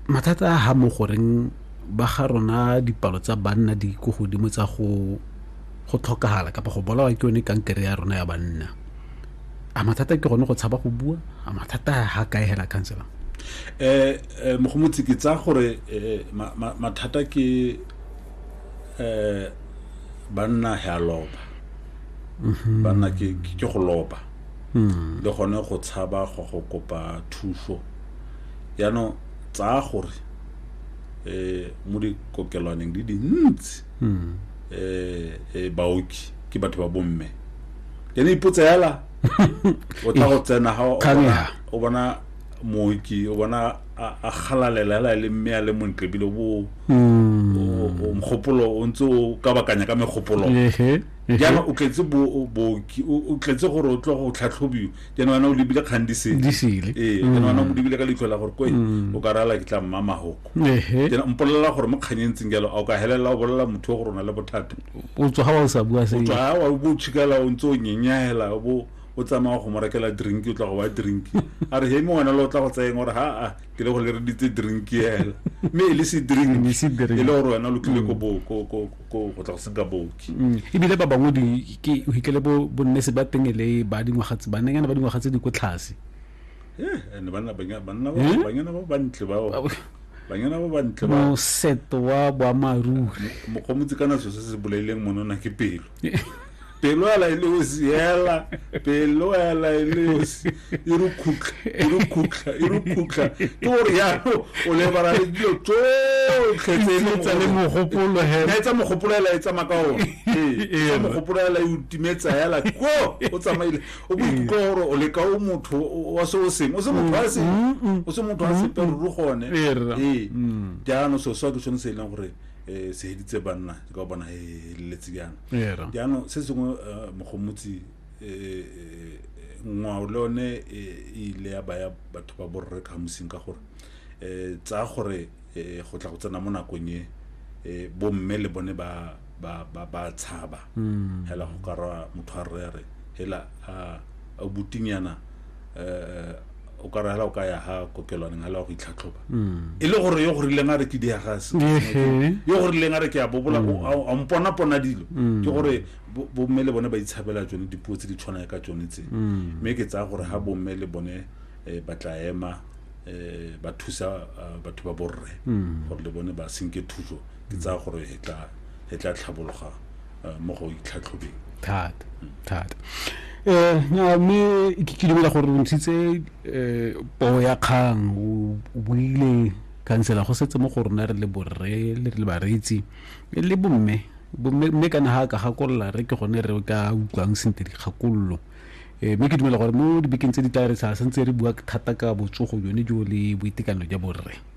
mathata a ga mo goreng ba ga rona dipalo tsa banna di ko godimo tsa go go tlhokagala kapa go bolawa ke yone kankere ya rona ya banna a mathata ke gone go tshaba go bua a mathata ga kae hela counselor eh, eh mogomotsi ke tsa gore eh, mathata ke eh banna he a loba mhm. banna ke go loba hmm. le gone go tshaba go go kopa thuso yaanong tsaya gore eh mo dikokelwaneng di dintsi hmm. eh, eh baoki ke batho ba bomme ene ipotsa yala o tla go tsena ga o bona mooki o bona a galalela hela e le mme a le montle ebile bo hmm. mogopolo o ntse o ka bakanya ka megopolo jaana o tletse booki o tletse gore o tle go tlhatlhobiwa ke nwana o lebile kgang di sele di sele ee ke mm. nwana o lebile ka leitlho la gore koe mm. o ka rala ke tla mma mahoko ke mpolelela gore mo kganyeng tseng jalo a o ka helelela o bolelela motho gore o na le bothata o tswa ga wa o sa bua se o tswa ga wa bo tshikala o ntse o nyenyahela bo o tsamaya go mo rekela drink o tla go wa drink a re heme wena le o tla go tsayeng gore ha a ke le go le reditse drink ela mme e le se drink e le gore wena lo tlile ko ko go tla go senka booki mm. ebile ba bangwe ke hitlele bo bonnese ba teng e le ba dingwaga tse bannenyana ba dingwaga tse di ko tlhase eh, and banna banyana ba bantle bao banyana ba bantle ba moseto wa boamaruri mokgomotsi kana so se se bolaileng monona ke pelo pelo ela e leosi ela pelo ela e leosi e re khutla e re khutla e re khutla ke gore yalo o lebala le dilo tsotlhe tse e tsa le mogopolo hela etsa mogopolo hela e tsamaya ka one ee mogopolo hela e utimetsa hela ko o tsamaile o bo ikutlwa gore o leka o motho wa se o seng o se motho wa seng o se motho wa sepe ruri gone ee jaanong so swa ke sone se e leng gore um se heditse banna ke ka bona he heleletse jaana Era. jaanong se sengwe eh, mogomotsi eh, eh, ngwao le yone eh, e ile ya baya batho ba borre ka mosing ka gore um tsaya gore eh, go tla go tsena mo nakong e eh, bomme le bone ba ba ba ba tshaba hela go ka ra motho a rre a re hela a a butinyana um o ka rahela o ka ya ha kokelwaneng hala wa go itlhatlhoba mm. e le gore yo go rileng a re ke diagase yo go rileng a re ke a bobola mm. a mponapona dilo mm. ke gore bomme le bone ba itshabela tsone dipuo tse di tshwanang ka tsone tse mme ke tsaya gore ha bomme le bone eh, ba tla ema um ba thusa eh, batho ba borre gore le bone ba senke thuso ke tsaya mm. gore e tla e tla tlhabologa eh, mo go itlhatlhobeng thata mm. thata eh mme ke ke dumela gore re ntshitse eh poo ya kgang o buile kansela go setse mo go rona re le borre le re le bareetsi le bomme bomme mme kana ha ka gakolola re ke gone re ka utlwang sentle dikgakololo eh, mme ke dumela gore mo dibekeng tse di tla re sa sentse re bua thata ka botsogo jone jo le boitekanelo jwa borre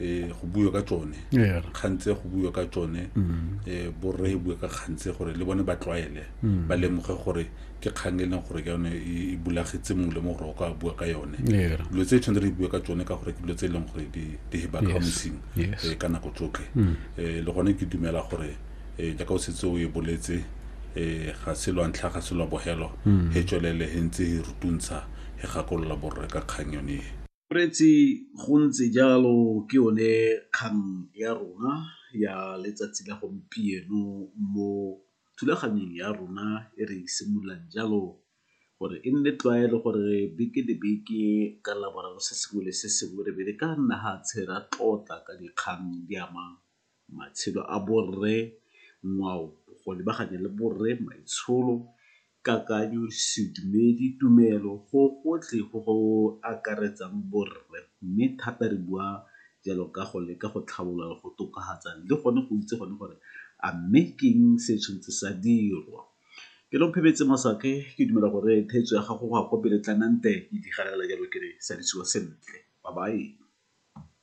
eh go buiwa ka tsone yeah. kgantse go buiwa ka tsone mm. eh borre e bue ka kgantse gore le bone ba tlwaele mm. ba lemoge gore ke kgang e leng gore ke yone e, e bulagetse mongwe le mongwe gore o ka bua ka yone dilo tse tshwanetse re bue ka tsone ka gore ke dilo tse e leng gore di heba ka mosing eh, ka nako tsotlhe mm. eh le gone ke dumela gore eh jaaka o setse o e boletse eh ga se lwa ntlha ga se lwa bogelo he tswelele he ntse he rutuntsha he gakolola borre ka kgang yone e Moreetsi, Go ntse jalo ke yone kgang ya rona ya letsatsi la gompieno mo thulaganyong ya rona e re simololang jalo gore e nne tlwaelo gore beke le beke ka Laboraro se sengwe le se sengwe re be re ka nna fatshe ra tlotla ka dikgang di amang matshelo a borre, ngwao, bokgoni ba gane le borre, maitsholo, kakanyo, sedumedi, tumelo, go gotlhe go go akaretsang borre mme thata re bua jalo ka go leka go tlhabolola le go tokafatsa le gone go itse gone gore a mme ke eng se se tshwanetse sa dirwa. Ke Nomphemetse Masake, ke dumela gore theetso ya gago go ya kwa pele Tlanante e di galela jalo ke re salisiwa sentle, bye bye.